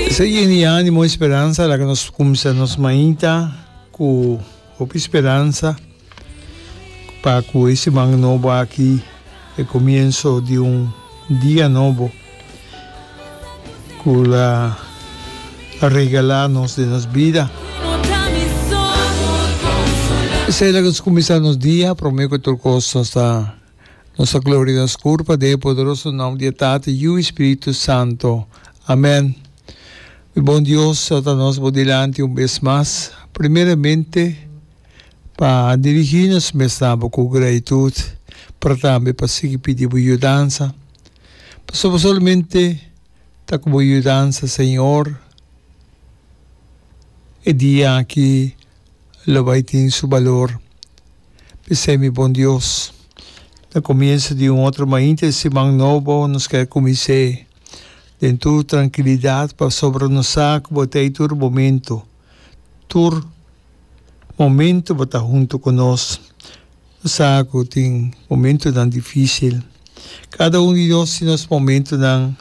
Esa yen di animo y speransa la que nos cumsa nos mañita cu hopi speransa pa cu e siman nobo aki e comienso di un dia nobo cu la a regala nos den nos bida. Esey la que nos cumisa nos dia prome cu tur cos nos ta. Nos a gloria nos cur pa den e poderoso nom di e Tata, Yu i Spiritu Santo. Amen. Mi bon Dios, ta nos bo dilanti un bes mas, primeramente pa dirigi nos mes na bo cu gratitud, pero tambe pa sigui pidi bo yudansa, pasobra solamente ta cu bo yudansa, Señor, e dia aki lo bai tin su balor. P'esei mi bon Dios, na comienso di un otro mainta di siman nobo nos ker cumins'é den tur trankilidad pasobra nos sa cu bo ta ei tur momento. Tur momento bo ta hunto cu nos. Nos sa cu tin momentonan dificil. Cada un di nos tin nos momentonan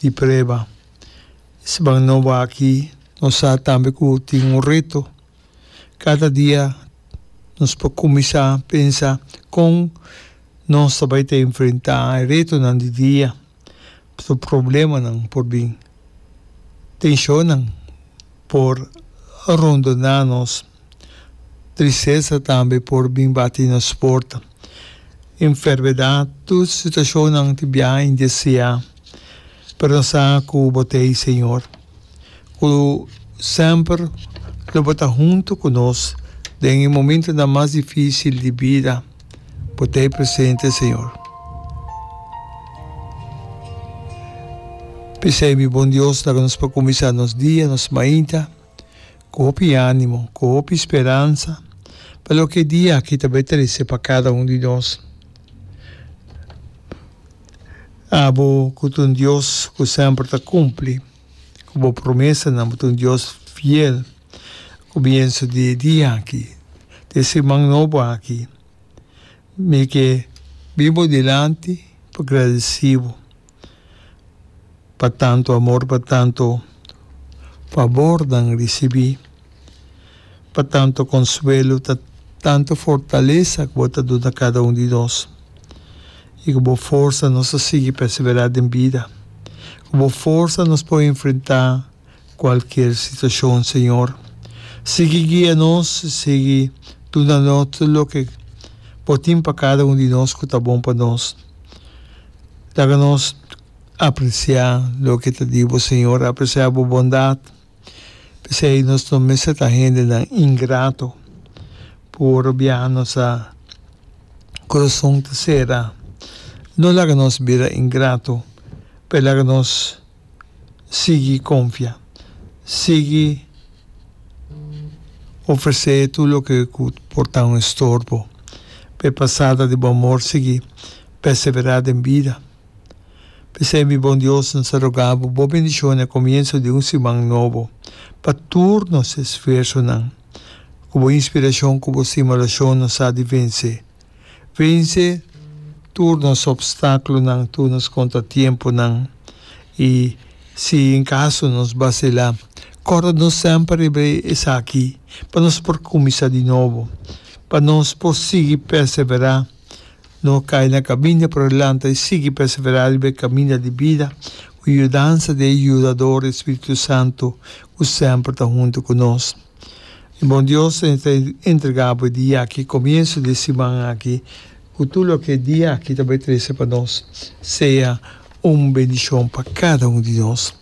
di prueba. Seman nobo aki nos sa tambe ku tin un reto. Kada dia nos por kuminsá pensa kon nos ta bai ta enfrentá e retonan di dia. Pasobra problemanan por bin. Tenshonnan por rondoná nos. Tristesa tambe por bin bati nos porta. Enfermedat, tur situashonnan di biaha indeseá. pero no sa cu bo ta e Señor cu semper lo bo ta hunto cu nos den e momentonan mas dificil di bida. Bo ta e presente Señor. P'esey mi Bon Dios laga nos pa cuminsa nos dia, nos mainta. Cu hopi animo, cu hopi speransa pa loke e dia aki ta bay trece pa cada un di nos. Abo cu ta un Dios cu semper ta cumpli cu bo promesanan, bo ta un Dios fiel. Comienso di e dia aki, di e siman nobo aki, mi ke bin bo dilanti pa gradeci bo. pa tantu amor, pa tantu fabor nan risibí, pa tantu konsuelo, ta tantu fortalesa ku bo ta duna kada un di nos i ku bo forsa nos ta sigui perseverá den bida, ku bo forsa nos por enfrentá cualkier situacion, Señor. Sigui guia nos, sigui duna nos tur loke Bo tin pa cada un di nos cu ta bon pa nos. Laga nos aprecia loke ta di Bo, Señor, aprecia Bo bondad. P'esei nos no mester ta hendenan ingrato, cu ora bia nos a corazon ta cera. No laga nos bira ingrato, p'esei laga nos. sigui konfia, sigui ofresé tur loke ku por ta un estorbo. P'e pasada di bo amor sigui perseverá den bida. P'esei mi bon Dios, N ta rogá bo, bo bendishon na komienso di un siman nobo, pa tur nos esfuersonan, ku bo inspirashon ku bo stima orashon nos sa di vensé. Vense tur nos opstáculonan, tur nos contratiemponan. I si en caso nos bacila, corda nos semper riba esaki pa nos por cuminsa di nobo, pa nos por sigui persevera, no cay na caminda pero lanta i sigui persevera riba e caminda di bida cu yudansa di e Yudador, e Spiritu Santo, cu semper ta hunto cu nos. Mi bon Dios, Señor ta entrega bo e dia aki, comienso di e siman aki, cu tur loke e dia aki ta bay trece pa nos, sea un bendicion pa cada un di nos.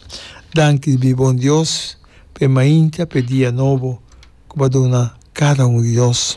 Danki mi bon Dios, pa e mainta, pa e dia nobo cu bo a duna cada un di nos.